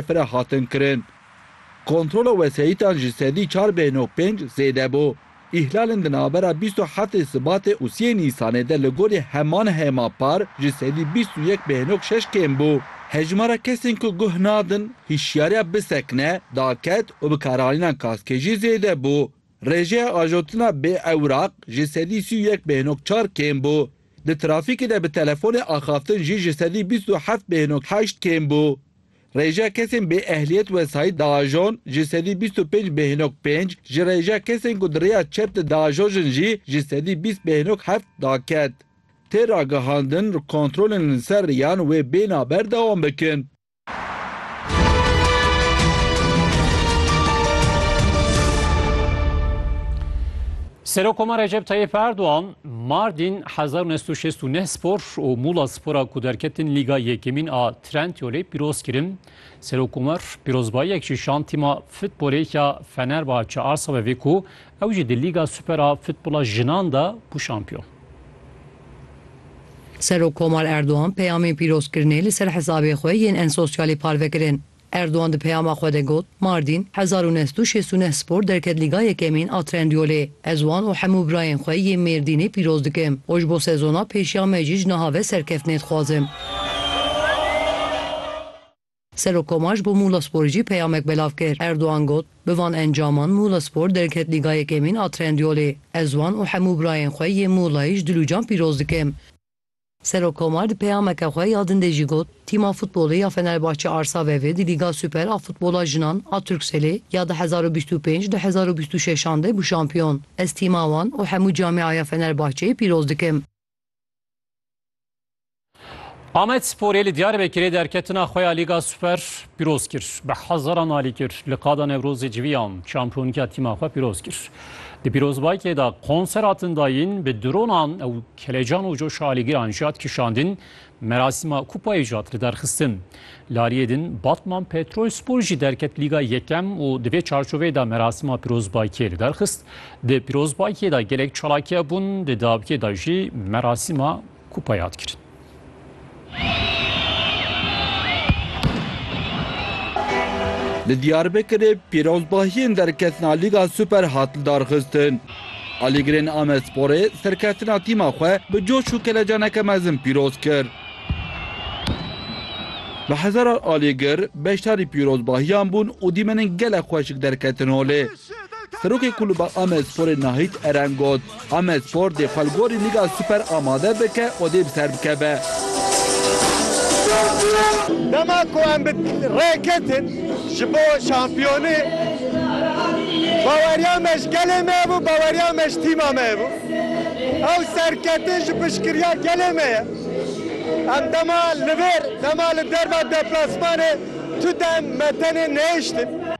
pere hatin kirin. Kontrola wesayîtan ji sedî çar bêhno pênc zêde bû. Îhlalên di navbera bîst û heftê Sibatê û siyê Nîsanê de li gorî heman hêma par ji sedî bîst û yek bêhnok şeş kêm bû. Hejmara kesên ku guh nadin hîşyariya bisekine, daket û bikaranîna kaskê jî zêde bû. Rêjeya ajotina bê ewraq ji sedî sî û yek bêhnok çar kêm bû. Di trafîkê de bi telefonê axaftin jî ji sedî bîst û heft bêhnok heşt kêm bû. Rêja kesên bê ehliyet wesayît diajon ji sedî bîst û pênc bêhnok pênc, ji rêja kesên ku di rêya çep de diajojin jî ji sedî bîst bêhnok heft daket. Tê ragihandin kontrolên li ser rêyan wê bêhna ber dewam bikin. Serokoma Recep Tayyip Erdogan Mardin hezar û neh sed û şêst û neh spor û Mûla Spora ku derketin Lîga Yekemîn a Trendyolê pîroz kirin. Serokomar pîrozbayiyek ji şand tîma futbolê ya Fenerbahçe Arsa ve vê ku ew jî di Lîga Super a futbola jinan de bû şampiyon. Serokkomar Erdogan peyamên pîrozkirinê li ser hesabê xwe yên en sosyalê parve kirin. Erdogan di peyama xwe de got, Mardîn, hezar û neh sed û şêst û neh Spor derket Lîga Yekemîn a Trendyolê. Ez wan û hemû birayên xwe yê Mêrdînê pîroz dikim û ji bo sezona pêşiya me jî ji niha ve serkeftinê dixwazim. Serokkoma ji bo Muğlasporê jî peyamek belav kir. Erdogan got, Bi van encaman Muğlaspor derket Lîga Yekemîn a Trendyolê. Ez wan û hemû birayên xwe yê Muğlayê ji dilûcan pîroz dikim. Serok Komar di peyameke xwe ya din de jî got, Tîma futbolê ya Fenerbahçe Arsa Vevê di Lîga Super a Futbola Jinan a Turkcellê ya du hezar û bîst û pênc du hezar û bîst û şeş an de bû şampiyon. Ez tîma wan û hemû camiaya Fenerbahçeyê pîroz dikim. Amedsporê li Diyarbekirê derketina xwe ya Lîga Super pîroz kir. Bi hezaran alî kir. Li qada Newrozê civiyan şampiyonîka tîma xwe pîroz kir. Di pîrozbayîkê de konser hatin dayîn, bi dronan û Kelecan û coşa alîgiran jî hat kişandin, merasîma kupayê jî hat lidarxistin. Lariyê din Batman Petrolspor jî derket Lîga Yekem û di vê çarçoveyê de merasîma pirozbakiyê lidarxist. Di pirozbakiyê de gelek çalakiya bûn, di dawîkê de jî merasîma kupayê hat kirin. Li Diyarbekirê pîrozbahiyên derketina Lîga Super hat lidarxistin. Alîgirên Amedsporê serkeftina tîma xwe bi coş û kelecaneke mezin pîroz kir. Bi hezaran alîgir beşdarî pîrozbahiyan bûn û dîmenên gelek xweşik derketin holê. Serokê Kulûba Amedsporê Nahît Eren got, Amed Spor dê xwe li gorî Lîga Super amade bike û dê bi ser bikeve. Dema ku em bi rê ketin ji bo şampiyonî, baweriya me ji gelê me hebû, baweriya me ji tîma me hebû. Ew serketin ji piştgiriya gelê me ye. Em dema li vir, dema li derva deplasmanê tu dem me tenê nehiştin.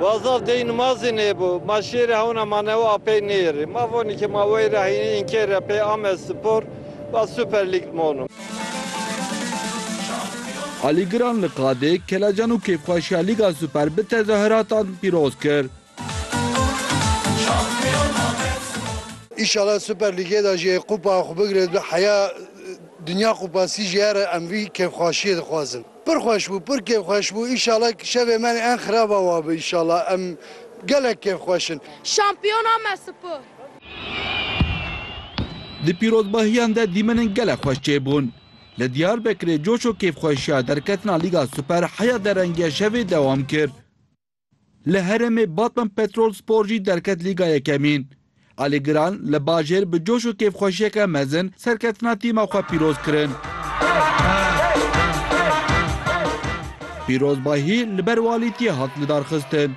Wa zaf dey nimazê nêbû. Ma şêrê hewna manewa a pey nêrê. Ma vonê ke ma wey ra hînê înkê re pey ame spor, wa Super Lig dimono. Alîgiran li qadê kelecan û kêfxweşiya Lîga Super bi tezahiratan pîroz kir. Înşala Super Lîgê de jî Kupa xwe bigire heya Dinya Kupasî jê re em vî kêfxweşiyê dixwazin. Pir xweş bû, pir kêfxweş bû. Înşallah şevê me ên xiraba wa bi înşallah. Em gelek kêfxweş in. Şampiyona me spor. Di pîrozbahiyan de dîmenin gelek xweş çêbûn. Li Diyarbekirê coş û kêfxweşiya derketina Lîga Super heya derengê şevê dewam kir. Li herêmê Batman Petrol Spor jî derket Lîga Yekemîn. Alî Giran li bajêr bi coş û kêfxweşiyeke mezin serketina tîma xwe pîroz kirin. Pîrozbahî li ber walîtiyê hat lidarxistin.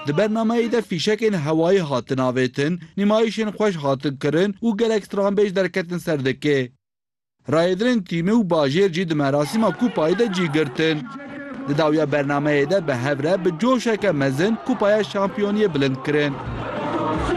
Di bernameyê de fîşekên hewayî hatin avêtin, nîmayîşên xweş hatin kirin û gelek stranbêj derketin ser dikê. Rayedrên tîmê û bajêr jî di merasîma kupayê de cî girtin. Di dawiya bernameyê de bi hev re bi coşeke mezin kupaya şampiyoniyê bilind kirin.